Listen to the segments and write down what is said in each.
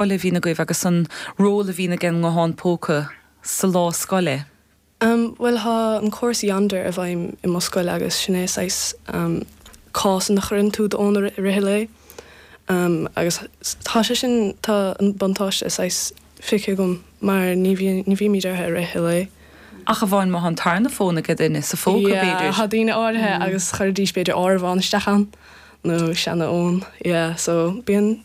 scoile a bhíonn agaibh agus an ról a bhíonn ag an nguthán póca sa lá scoile? Bhuel, tá an córas Yondr i bhfeidhm i mo scoil agus sin é saghas cás ina chuireann tú d'fhón i rith an lae agus tá sé sin, tá an buntáiste saghas feicthe agam mar ní bhíonn, ní bhímid air i rith an lae. Ach amháin má tá an tarna fón ag duine, sa phóca b'fhéidir? Yeah, tá daoine áirithe agus chuirfidís b'fhéidir áireamhán isteach ann nó seana fhón, yeah, so bíonn.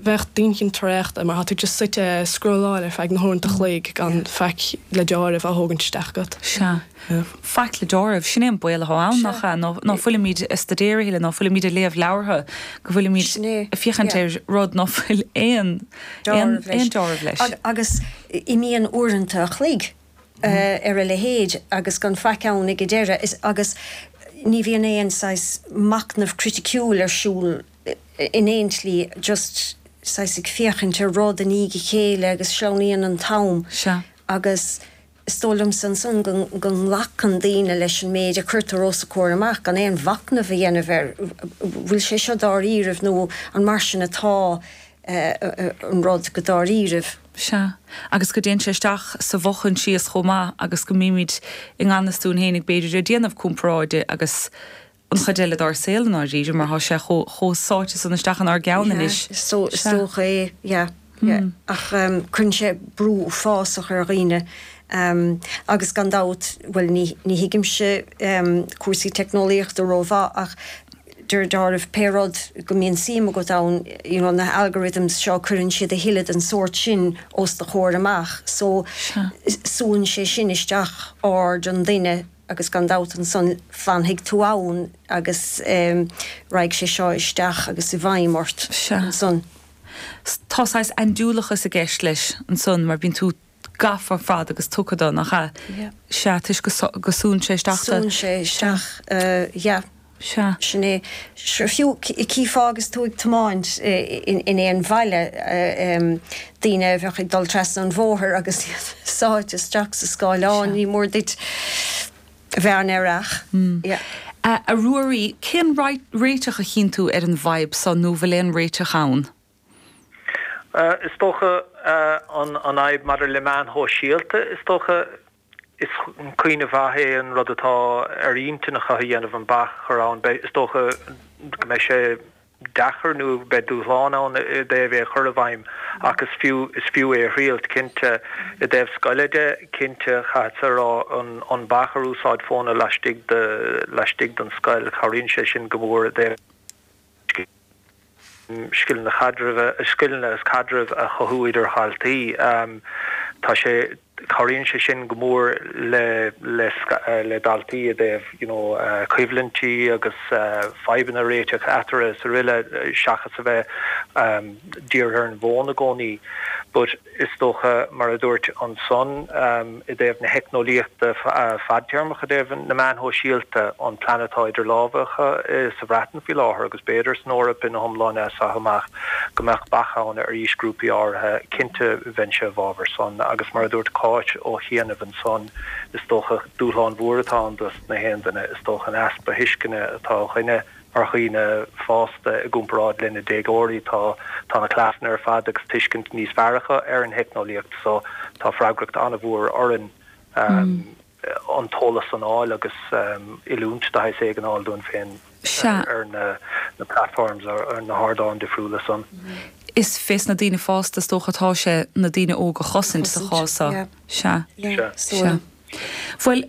bheadh d'inchinn traochta mar tá tú just suite a' scrolláil ar feadh na huaireanta an chloig gan faic le dealramh a thógaint isteach agat. Sea. Faic le dealramh, sin é an baol athá ann, nach ea? Nó, ná fuilimid a' staidéar a thuilleadh, ná fuilimid a' léamh leabhartha go bhfuilimid a' féachaint ar rud ná fuil aon, aon, aon dealramh leis. Agus imíonn uaireanta an chloig ar a leithéid agus gan faic ann ag a deireadh is, agus ní bhíonn aon saghas machnamh criticiúil ar siúl, in aon tslí, just saghas ag féachaint ar rud i ndiaidh a chéile agus sleamhnaíonn an t-am. Sea. Agus is dóigh liomsa ansan go nglacann daoine leis an méid a chuirtear os a gcomhair amach gan aon mhachnamh a dhéanamh ar bhfuil sé seo dáiríribh nó an mar sin atá an rud go dáiríribh. Sea. Agus go dtéann sé isteach sa bhfo-chomhfhios chomh maith agus go mbímid i ngan fhios dúinn féin ag, b'fhéidir, déanamh comparáide agus an chuid eile dár saol i ndáiríre, mar tá sé chomh sáite san isteach inár gceann anois. Yeah, is dócha é, yeah, yeah. Ach cuireann sé brú uafásach ar dhaoine agus gan dabht, bhuel, ní thuigimse cúrsaí teicneolaíochta rómhaith ach deir Darach pé rud go mbíonn suim agat ann, you know, na h-algorithms seo, cuireann siad a thuilleadh den sórt sin os do chomhair amach so súnn sé sin isteach aird an duine. agus gan dabht ansan fanfaidh tú ann agus raghaidh sé seo isteach agus i bhfeidhm ort ansan. Sea. Tá saghas andúileachas i gceist leis ansan mar bíonn tú gafa ar fad agus tugtha do, nach ea? Sea, toisc go súnn sé isteach sa. Súnn sé isteach, yeah. Sea. Sin é. Fiú chífeá agus tú ag tiomáint in aon bhaile daoine a bheadh ag dul trasna an bhóthair agus iad sáite isteach sa scáileán, ní mór duit a bheith an-aireach. A Ruairí, cén réiteach a chíonn tú ar an bhfadhb so, nó bhfuil aon réiteach ann? Is dócha an fhadhb maidir le meáin shóisialta, is dócha. Is cuimhneamh maith é an rud atá ar intinn acu a dhéanamh, an bac a chur ann. Is dócha go mbeidh sé deacair nó beidh dúshlán ann i dtaobh é a chur i bhfeidhm ach is fiú is fiú é a thriailt, cinnte. I dtaobh scoile de, cinnte, caithfeadsa a rá an an bac ar úsáid fóna laistigh de laistigh den scoil, cabhraíonn sé sin go mór i dtaobh scileanna caidrimh, scileanna agus caidreamh a chothú idir dhaltaí. Tá sé, cabhraíonn sé sin go mór le, le, le daltaí i dtaobh, you know, coimhlintí agus fadhbanna a réiteach eatarthu is araile seachas a bheith dírithe ar an bhfón i gcónaí. But. Is dócha, mar a dúirt ansan, i dtaobh na teicneolaíochta fadtéarmach, i dtaobh na meáin shóisialta, an plean atá idir lámha acu sa Bhreatain faoi láthair agus b'fhéidir san Eoraip ina hiomláine as seo amach, go mbeadh bac ann ar aoisghrúpaí áirithe. Cinnte, bheinnse i bhfabhar san agus, mar a dúirt Cáit ó chianaibh ansan, is dócha, dúshlán mhór atá ann dos na haoinne, is dócha, an easpa thuisceana atá againne a Mar dhaoine fásta, i gcomparáid le na déagóirí, tá na cleasanna ar fad agus tuiscint níos fearr acu ar an theicneolaíocht so tá freagracht an-mhór orainn an t-eolas san a fháil agus oiliúint de shaghas éigin a fháil dúinn féin ar na platforms, ar na hardáin difriúla san. Is fé sna daoine fásta is dócha atá sé na daoine óga a chosaint sa chás so. Sea. Sea. Sea. Bhuel,